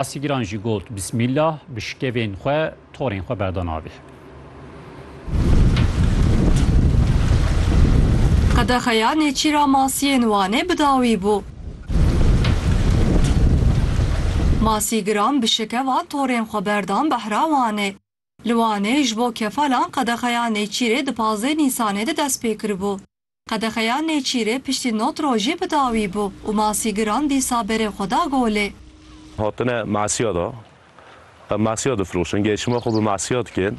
Asîgiran jî got Bismîllah bi şikevên xwe torên xwe berda navê. Qedexeya Nêçîra Masiyên Wanê bi dawî bû. Masîgiran bi şikeva torên xwe berdan behra Wanê. Li Wanê ji bo kefalan qedexeya Nêçîrê di pazdeh Nîsanê de dest pê kiribû. Qedexeya Nêçîrê piştî not rojî bi dawî bû û masîgiran dîsa berê xwe da golê. Hatine masiya da. Em masiya difiroşin. Gelşima xwe bi masiya dikin.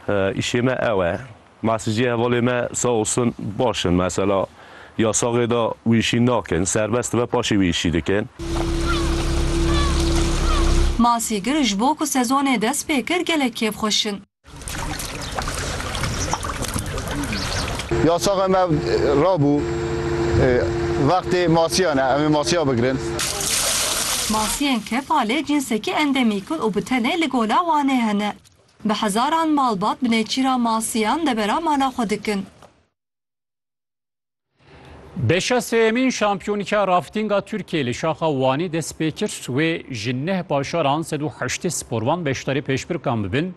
Îşê me ew e. Masîciyê hevalê me sağ olsun baş in. Mesela yasaxê de wî îşî nakin. Serbest dibe paşê wî îşî dikin. Masîgir ji bo ku sezonê dest pê kir gelek kêfxweş in. Yasaxa me rabû vextê masiyan e, em ê masiya bigirin. Masiyên kefalê cînsekî endemîk in û bi tenê li Gola Wanê hene. Bi hezaran malbat bi nêçîra masiyan debera mala xwe dikin. Beşa sêyemîn şampiyonîka raftinga Tirkiyeyê li şaxa Wanê dest pê kir. Wê ji neh paşaran sed û heştê sporvan beşdarî pêşbirkan bibin.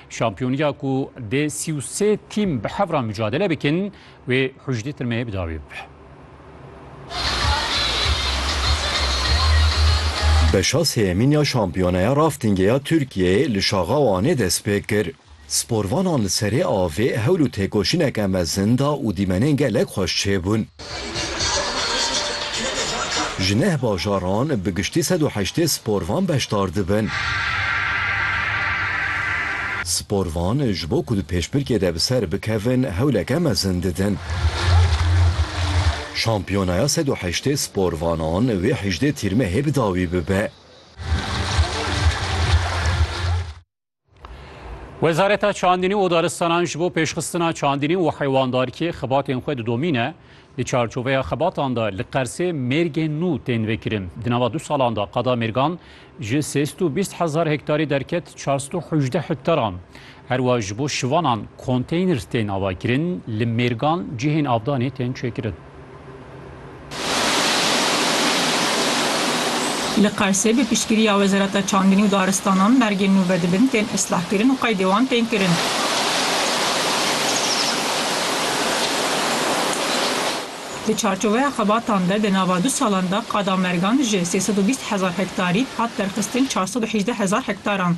Şampiyonîya ku dê sî û sê tîm bi hev re micadele bikin wê hucdî tirmeyê bi dawî bibe. Beşa sêyemîn ya şampiyoneya raftingê ya Tirkiyeyê li şaxa Wanê dest pê kir. Sporvanan li serê avê hewl û têkoşîneke mezin da û dîmenên gelek xweş çêbûn. Ji neh bajaran bi giştî sed û heştê sporvan beşdar dibin. Sporvan ji bo ku di pêşbirkê de bi ser bikevin hewleke mezin didin. Şampiyonaya sed û heştê sporvanan wê hejdê tîrmehê bi dawî bibe. Wezareta Çandînî û Daristanan ji bo pêşxistina çandînî û heywandarkiyê xebatên xwe didomîne. Di çarçoveya xebatan de li Qersê mêrgên nû tên vekirin. Di nava du salan de qada mêrgan ji sê sed û bîst hezar hektarî derket çar sed û hejdeh hektaran. Her wa ji bo şivanan konteyner tên avakirin, li mêrgan cihên avdanê tên çêkirin. Li Qersê bi piştgiriya Wezareta Çandinî û Daristanan bergên nû vedibin tên islahkirin û qeydê wan tên kirin. Di çarçoveya xebatan de di nava du salan de qada Mergan ji sê sed û bîst hezar hektarî hat derxistin çar sed û hejdeh hezar hektaran.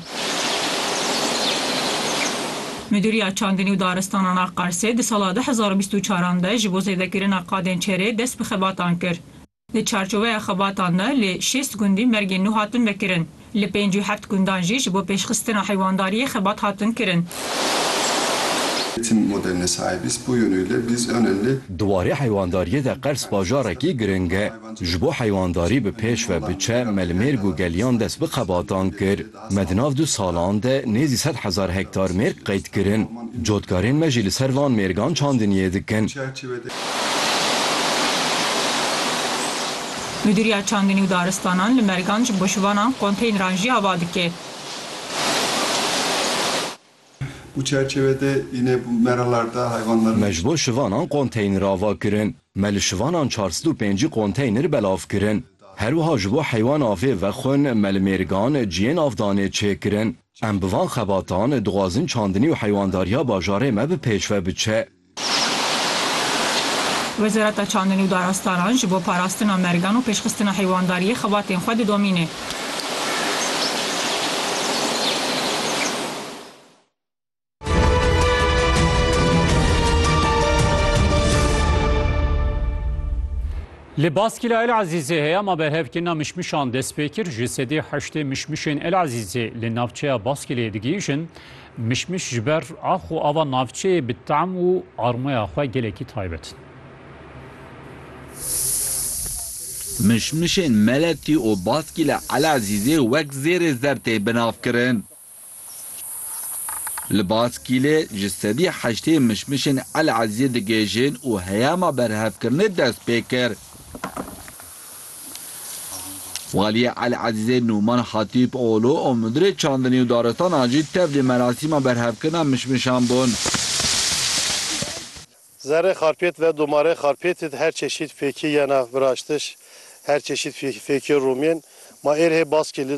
Midûriya Çandinî û Daristanan a Qarsê di sala du hezar û bîst û çar an de ji bo zêdekirina qadên çêrê dest bi xebatan kir. Di çarçoveya xebatan de li şêst gundî mergên nû hatin vekirin. Li pênc û heft gundan jî ji bo pêşxistina heywandariyê xebat hatin kirin. Tim moderne saibis bu yönüyle biz önenli. Di warê heywandariyê de Qers bajarekî giring e. Ji bo heywandarî bi pêş ve biçe, melmêrg û geliyan dest bi xebatan kir. Me di nav du salan de nêzî sed hezar hektar mêrg qeyd kirin. Cotkarên me jî li ser van mêrgan çandiniyê dikin. Mudîriya Çandinî û Daristanan li Mergan ji bo şivanan konteyneran jî ava dike. Bu çerçeve de yine bu meralarda hayvanların. Me ji bo şivanan konteyner ava kirin. Me li şivanan çar sed û pêncî konteyner belav kirin. Her wiha ji bo heywan avê vexwin me li mêrgan ciyên avdanê çê kirin. Em bi van xebatan dixwazin çandinî û heywandarîya bajarê me bi pêşve biçe. Wezareta Çandinê û Darastaran ji bo parastina mergan û pêşxistina heywandariyê xebatên xwe didomîne. Li Baskîla El Ezîzê heya ma berhevkirina mişmişan dest pê kir. Ji sedî heştê mişmişên El Ezîzê li navçeya Baskîlê digihîjin. Mişmiş ji ber ax û ava navçeyê bi tam û armoya xwe gelekî taybet in. Mişmişên Meletî û Baskî li Elezîzê wek zêrê zer tê binavkirin. Li Baskîlê ji sedî heştê mişmişên Elezîzê digihêjin û heyama berhevkirinê dest pê kir. Waliyê El Ezîzê Nûman Hatîp Oglu û Mudirê Çandinî û Daristanan jî tevlî merasîma berhevkirina mişmişan bûn. Zerrê xarpêt ve domarê xarpêtî di her çeşît fêkî yena viraştiş, her çeşît fêkî romên. Ma êrhê baskê li.